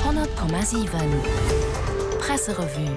100,7 Presserevue.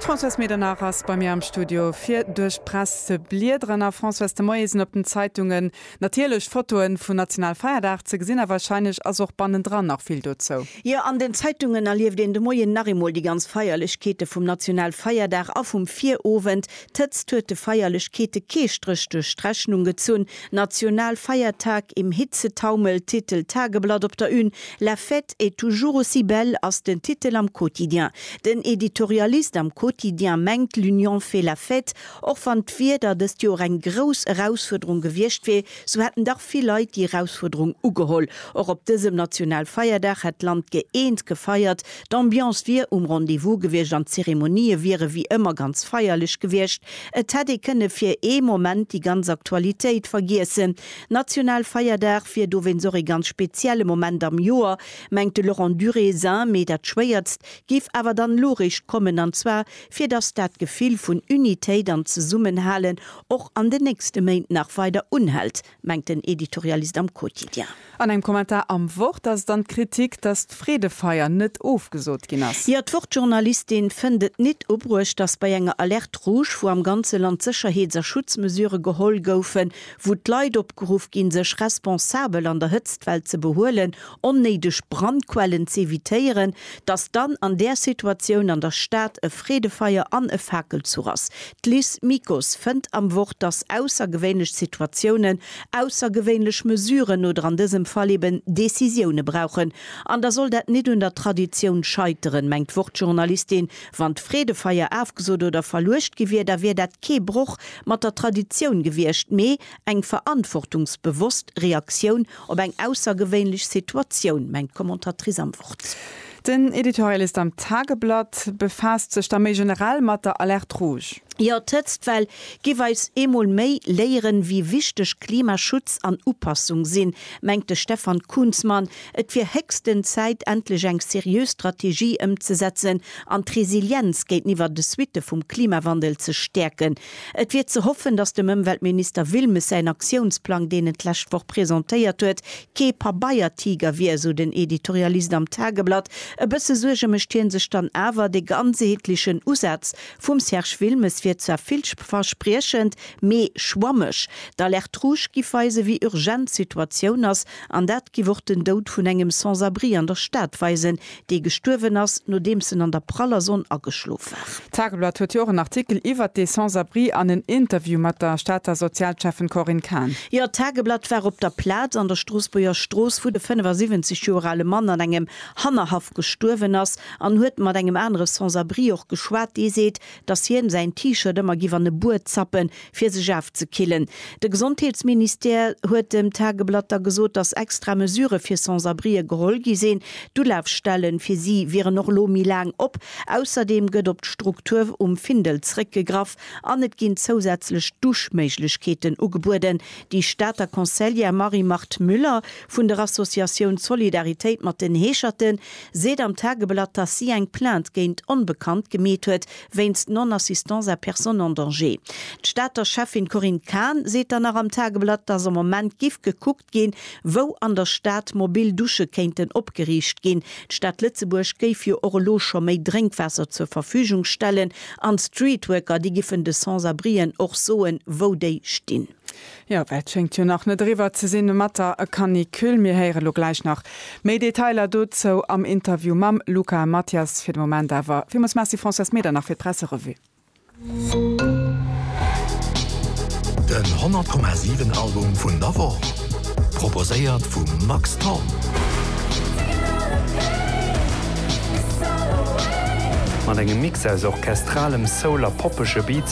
D'Françoise Medernach ass bei mir am Studio fir duerch d'Press ze bliederen. A Françoise, de Moie sinn op den Zeitungen natierlech Fotoe vun Nationalfeierdag ze gesinn, a wahrscheinlech ass och bannendran nach vill dozou. Jo, an den Zeitungen erlieft een de Moien nach eemol déi ganz Feierlechkeete vum Nationalfeierdag a vum Virowend, D'Hëtzt huet de Feierlechkeete kee Stréch duerch d'Rechnung gezunn, Nationalfeiertag im Hitzetaumel, Titel Tageblatt op der Une, La fête est toujours aussi belle ass den Titel am Quotidien. Den Editorialist am Quotidien mengt, l'union fait la fête. Och wann d'Wieder dëst Joer eng grouss Erausfuerderung gewiescht wier, sou hätten dach vill Leit déi Erausfuerderung ugeholl. Och op dësem Nationalfeierdag hätt d'Land gëeent gefeiert, D'Ambiance wier um Rendez-vous gewiescht an d'Zeremonië wiere wéi ëmmer ganz feierlech gewiescht. Et hätt ee kënne fir ee Moment déi ganz Aktualitéit vergiessen. National Feierdag wier dowéinst och ee ganz spezielle Moment am Joer, mengt de Laurent Durézin. Mee dat Schwéiertst géif awer dann elo réischt kommen, an zwar fir datt dat Gefill vun Unitéit an Zesummenhalen och an den nächste Méint nach weider unhält. mengt den Editorialist am Quotidien. An engem Kommentar am Wort ass et dann d'Kritik, datt d'Freedefeier net ofgesot ginn ass. Jo, d'Wort-Journalistin fënnt et nit ubruecht, datt bei enger Alerte rouge, wou am ganze Land Sécherheets a Schutzmesurë geholl goufen, wou d'Leit opgeruff ginn, sech responsabel an der Hëtztwell ze behuelen, onnéideg Brandquellen z'evitéieren, datt dann an där Situatioun an der Stad e Freedefeier an e Fakelzuch ass. D'Liz Mikus fënnt am Wort, datt aussergewéinlech Situatiounen aussergewéinlech Mesuren oder an dësem Fall eben Decisioune brauchen. An da soll dat nit un der Traditioun scheiteren, mengt d'Wort-Journalistin. Wann d'Freedefeier afgesot oder verluecht gi wier, da wier dat kee Broch mat der Traditioun gewiescht, mee eng verantwortungsbewosst Reaktioun Op eng aussergewéinlech Situatioun, mengt d'Commentatrice am Wort. Den Editorialist am Tageblatt befaasst sech da méi generell mat der Alerte rouge. Jo, d'Hëtztwell giff eis eemol méi léieren, wéi wichteg Klimaschutz an Upassung sinn, mengt de Stefan Kunzmann. Et wier héchsten Zäit, endlech eng seriö Strategie ëmzesetzen an d'Resilienz géinteniwwer de Suitte vum Klimawandel ze stäerken, Et wier ze hoffen, datt dem Ëmweltminister Wilmes säin Aktiounsplang, deen en d'lescht Woch presentéiert huet, kee Pabeiertiger wier, esou den Editorialist am Tageblatt. E bësse Suerge mécht hie sech dann awer, De ganzeheetlechen Usaz vum Serge Wilmes wier zwar villverspriechend, mee schwammeg. D'Alerte rouge giff weisen, wéi urgent d'Situatioun ass, an dat giff och den Doud vun engem Sans-abri an der Stad weisen, dee gestuerwen ass, nodeems en an der praller Sonn ageschlof war. D'Tageblatt huet jo och en Artikel iwwert dee Sans-Abri an en Interview mat der Stater Sozialschäffen Corinne Cahen. Jo, d'Tageblatt war op der Plaz an der Stroossbuerger Strooss, wou de 75 Joer ale Mann an engem Hannerhaff gestuerwen ass, an huet mat engem anere Sans-Abri och geschwat, dee seet, dass hien säin T-Shirt ëmmer giff an e Bued zappen, fir sech afzekillen. De Gesondheetsministère huet dem Tageblatt da gesot, dass extra Mesure fir Sans-Abrien geholl gi sinn. D'Ulafstellen fir si wieren och elo méi laang op. Ausserdeem gëtt op d'Struktur um Findel zeréckgegraff an et ginn zousätzlech Duschméiglechkeeten ugebueden. Déi Stater Conseillère Marie-Marthe Müller vun der Associatioun Solidaritéit mat den Heescherten seet am Tageblatt, dass si eng Plainte géint Onbekannt gemeet huet wéinst Non-assistance à personne en danger. D'Stater Schäffin Corinne Cahen seet dann nach am Tageblatt, dass am Moment giff gekuckt ginn, wou an der Stad mobil Dusche kéinten opgeriicht ginn. D'Stad Lëtzebuerg géif jo och elo scho méi Drénkwaasser zur Verfügung stellen an d'Streetworker, déi giffen de Sans-abrien och soen, wou déi stinn. Jo, well et schéngt jo nach net eriwwer ze sinn mat der Canicule. Mir héiere lo gläich nach méi Detailer dozou am Interview mam Luca Mathias. Fir de Moment awer villmools Merci Françoise Meder nach fir d'Presserevue. Den 100,7 Album vun der Woch proposéiert vum Max Thorn. Mat engem Mix aus orchestralem Soul a poppege Beats,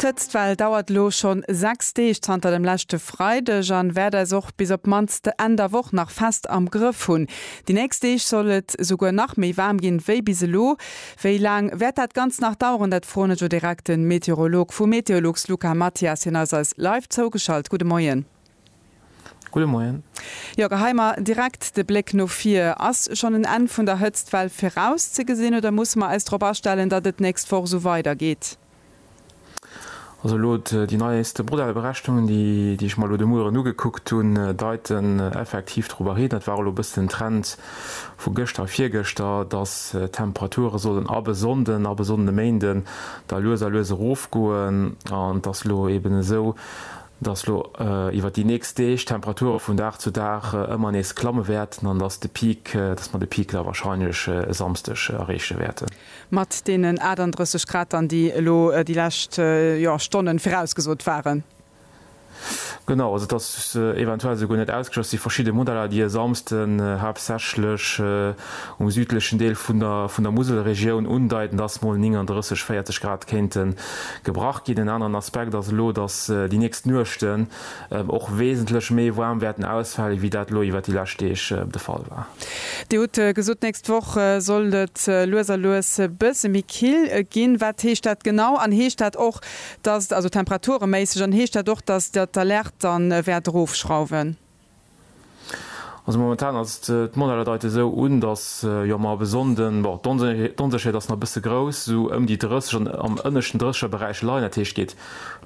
D'Hëtztwell dauert elo schonn 6 Deeg zanter dem leschte Freideg an wäert eis och bis op d'mannst Enn der Woch nach fest am Grëff hunn. Déi nächst Deeg soll et esouguer nach méi waarm ginn wéi bis elo. Wéi laang wäert dat Ganzt nach daueren? Dat froen ech o direkt den Meteorolog vu Meteolux Luca Mathias. Hien ass eis live zougeschalt. Gudde Moien. Gudde Moien. Jo, gehei mer direkt de Bléck no vir. Ass schonn en Enn vun der Hëtztwell virauszegesinn oder musse mer eis drop astellen, datt et d'nächst Woch esou weidergeet? Also elo déi neieste Modellberechnungen, déi ech mer elo de Mueren ugekuckt hunn, deiten effektiv dorobber hin, dat war elo e bëssen den Trend vu gëschter a virgëschter, datt d'Temperature sollen ab e Sonnden, ab e Sonnden e Méinden da lues a lues erofgoen an datt elo eben esou dass lo iwwert déi nächst Deeg d'Temperature vun Dag zu Dag ëmmer nees klamme wäerten an dass de Peak, dass mer de Peak da wahrscheinlech e Samsdeg erreeche wäerten. Mat deenen 38 Grad dann, déi elo déi lescht, jo, Stonnen virausgesot waren. Genau, also et ass eventuell esouguer net ausgeschloss, et si verschidde Modeller, déi e Samsden haaptsächlech. um südlechen Deel vun der vun der Muselregioun undeiten, dass mol 39, 40 Grad kéinte gebrach ginn. En aneren Aspekt ass elo, dass déi nächst Nuechten och wesentlech méi waarm wäerten ausfalen, wéi dat elo iwwert déi lescht Deeg de Fall war. Dir hutt gesot, d'nächst Woch sollt et lues a lues e bësse méi kill ginn. Wat heescht dat genau? An heescht dat och, dass, also temperatureméisseg, an heescht dat och, dass Der d'Alerte dann wäert erofschrauwen? Also momentan ass et, d'Modelle deiten esou un, datt jo mer op e Sonnden, bon d'Onsécherheet ass nach e bësse grouss, esou ëm déi 30, an am ënneschten 30 er Beräich leien. Dat heescht geet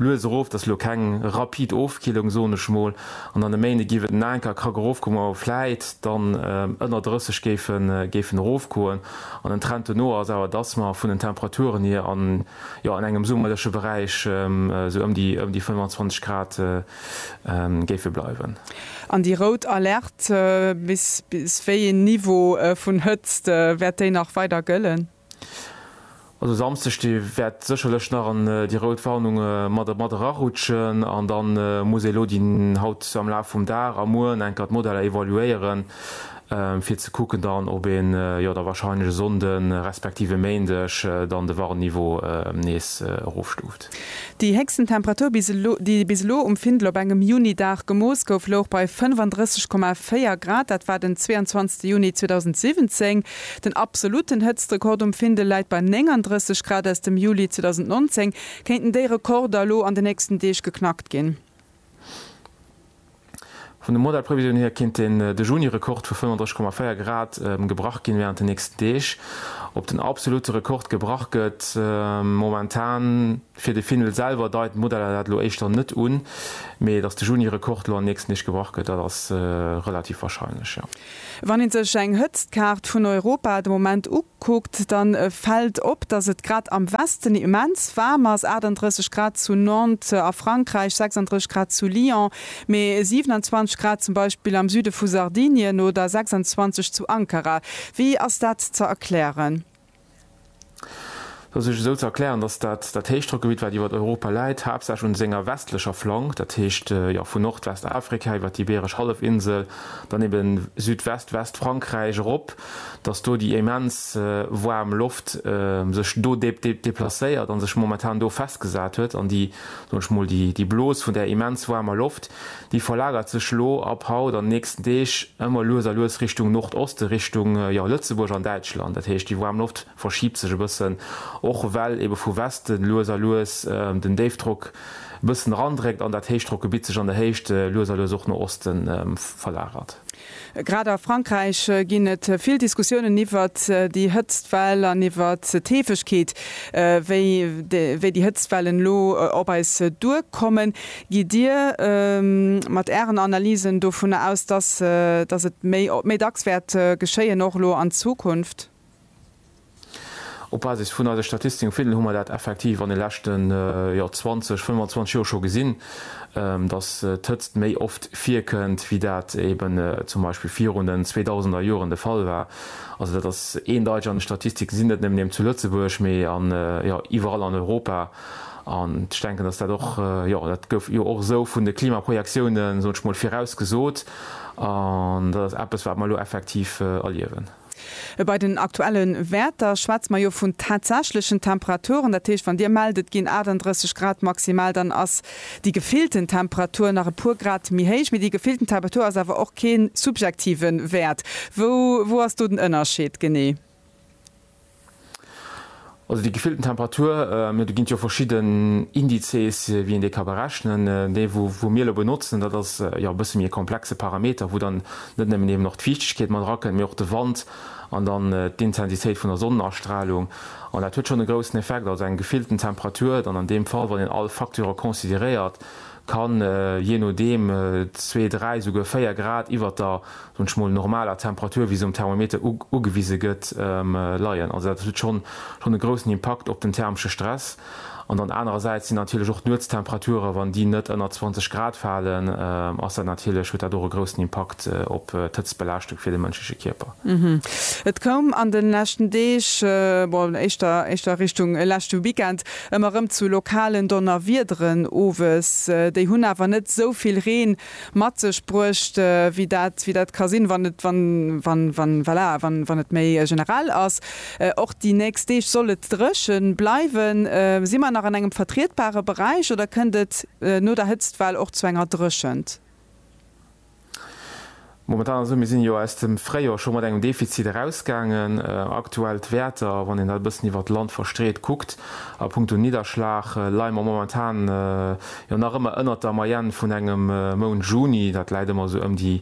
lues erof, dat ass elo keng rapid Ofkillung soen ech mol. An dann e Méinde giff et en Anker e Krack erofgoen, wou mer vläit dann ënner 30 géifen erofgoen. An den Trend dono ass awer, datt mer vun den Temperaturen hier an jo an engem summerleche Beräich esou ëm déi 25 Grad géife bleiwen. An déi rout Alerte, bis wéi een Niveau vun Hëtzt wäert déi nach weider gëllen? Also Samsdeg de wäert sécherlech nach an déi rout Warnung mat erarutschen an da muss ee elo déi haut am Laf vum Dag a mueren enker d'Modeller evaluéieren, fir ze kucken dann, ob een jo da wahrscheinlech e Sonnde respektiv e Méindeg dann de Warnniveau nees erofstuuft. Aarbecht. Déi héchsten Temperatur, bis elo, déi bis elo um Findel op engem Juni-Dag gemooss gouf, louch bei 35,4 Grad. Dat war den 22. Juni 2017. Den absolutten Hëtztrekord um Findel läit bei 39 Grad aus dem Juli 2019. Kéinten déi Rekorder elo an de nächsten Deeg geknackt ginn? Vun de Modellprevisioune hier kéint den de Juni-Rekord vu 35,4 Grad gebrach ginn wärend den nächsten Deeg. Ob den absolutte Rekord gebrach gëtt momentan fir de Findel selwer deiten d'Modeller dat elo éischter net un, mee datt de Juni-Rekord elo an den nächsten Deeg gebrach gëtt, dat ass relativ warscheinlech, jo. Wann ee sech eng Hëtztkaart vun Europa de Moment kuckt, da fält op, datt et grad am Westen immens waarm ass, 38 Grad zu Nantes a Frankräich, 36 Grad zu Lyon, mee 27 Grad zum Beispill am Süde vu Sardinien oder 26 zu Ankara. Wéi ass dat ze erklären? fir sech esou ze erklären, dass dat dat Héichdrockgebitt, wat iwwer Europa läit, haaptsächlech un senger westlecher Flank, dat heescht, jo, vun Nordwestafrika iwwer d'Ibeeresch Hallefinsel, dann eben Südwest, Westfrankräich erop, dass do déi immens waarm Loft sech do déplacéiert a sech momentan do festgesat huet. An déi, soen ech mol, déi Blos vun där immens waarmer Loft, déi verlagert sech elo ab haut an den nächsten Deeg ëmmer lues a lues Richtung Nordoste, Richtung, jo, Lëtzebuerg an Däitschland. Dat heescht, déi waarm Loft verschiebt sech e bëssen, och well ebe vu Westen lues a lues den Déifdrock e bëssen erandréckt an dat Héichdrockgebitt sech an der Héicht lues a lues och no Oste verlagert. Grad a Frankräich ginn et vill Diskussiounen iwwert déi Hëtztwell an iwwert d'Heefegkeet, wéi déi Hëtztwellen elo op eis duerkommen. Gitt Dir mat Ären Analysen dovunner aus, dass et méi dacks wäert geschéien, och elo an Zukunft? Op Basis vun eise Statistiken hu mer dat effektiv an de leschten 20, 25 Joer scho gesinn, dass d'Hëtzt méi oft virkënnt, wéi dat eeben zum Beispill virun den zweedausender Joren de Fall war. Also dat ass eendeiteg an de Statistiken ze sinn, net nëmmen eeben zu Lëtzebuerg, mee iwwerall an Europa. An ech denken, dass dat och, jo dat gouf jo och esou vun de Klimaprojektiounen, soen ech mol, virausgesot. An dat ass eppes, wat mer elo effektiv erliewen. Bei den aktuelle Wäerter schwätze mer jo vun tatsächlechen Temperaturen. Dat heescht, wann Dir mellt, et ginn 38 Grad maximal, dann ass déi gefillten Temperatur nach e puer Grad méi héich. Mee déi gefillten Temperatur ass awer och kee subjektive Wäert. Wou ass do den Ënnerscheed genee? Also déi gefillten Temperatur, do ginn et jo verschidden Indizes, wéi een déi ka berechnen. Dee wou mir elo benotzen, dat ass jo e bësse méi e komplexe Parameter, wou dann net nëmmen eben och d'Fiichtegkeet mat erakënnt, mee och de Wand an dann d'Intensitéit vun der Sonnenastralung. An dat huet schonn e groussen Effekt. Also eng gefillten Temperatur dann an deem Fall, wann een all Facteure consideréiert, Kann jee nodeem zwee, dräi, souguer véier Grad iwwert der, soen ech mol, normaler Temperatur, wéi se um Thermometer ugewise gëtt, leien. Also dat huet schonn schonn e groussen Impakt op den thermesche Stress. An dann anerersäits sinn natierlech och d'Nuetstemperaturen, wann déi net ënner 20 Grad falen, ass dat natierlech, huet dat och e groussen Impakt op d'Hëtztbelaaschtung fir de mënschleche Kierper. Et koum an de leschten Deeg, bon éischter éischter Richtung leschte Weekend, Ëmmer erëm zu lokalen Donnerwiederen owes. Déi hunn awer net esou vill Reen mat sech bruecht, wéi dat wéi dat ka sinn, wann et wann wann wann voilà wann wann et méi generell ass. Och déi nächst Deeg soll et dréche bleiwen. Si mer nach an engem vertrietbare Beräich oder kënnt et no der Hëtztwell och zu enger Dréchent? Momentan ass et esou, mir sinn jo aus dem Fréijor scho mat engem Defizit erausgaangen. Aktuell d'Wäerter, wann een dat e bëssen iwwert d'Land verstreet kuckt, a punkto Nidderschlag leie mer momentan jo nach ëmmer ënnert der Moyenne vun engem Mount Juni. Dat läit ëmmer esou ëm déi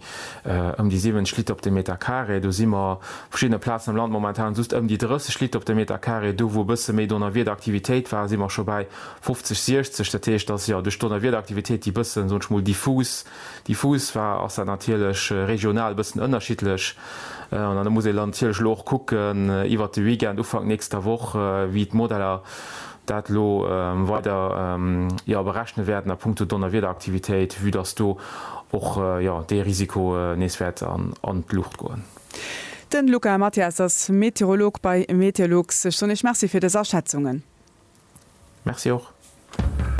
ëm déi 70 Liter op de Meter Carré. Do si mer op verschiddene Plazen am Land momentan just ëm déi 30 Liter op de Meter Carré. Do wou e bësse méi Donnerwiederaktivitéit war, si mer scho bäi 50, 60. Dat heescht, datt jo duerch d'Donnerwiederaktivitéit déi bëssen, soen ech mol, diffus Déi Fuusfaa ass dann natierlech regional e bëssen ënnerschiddlech an da muss ee natierlech elo och kucken iwwert de Weekend, Ufank nächster Woch, wéi d'Modeller dat elo weider, jo, berechne wäerten a punkto Donnerwiederaktivitéit, vue dass do och, jo, dee Risiko nees wäert an d'Luucht goen. Den Luca Mathias ass Meteorolog bei Meteolux. Ech soen Iech Merci fir dës Aschätzungen. Merci och.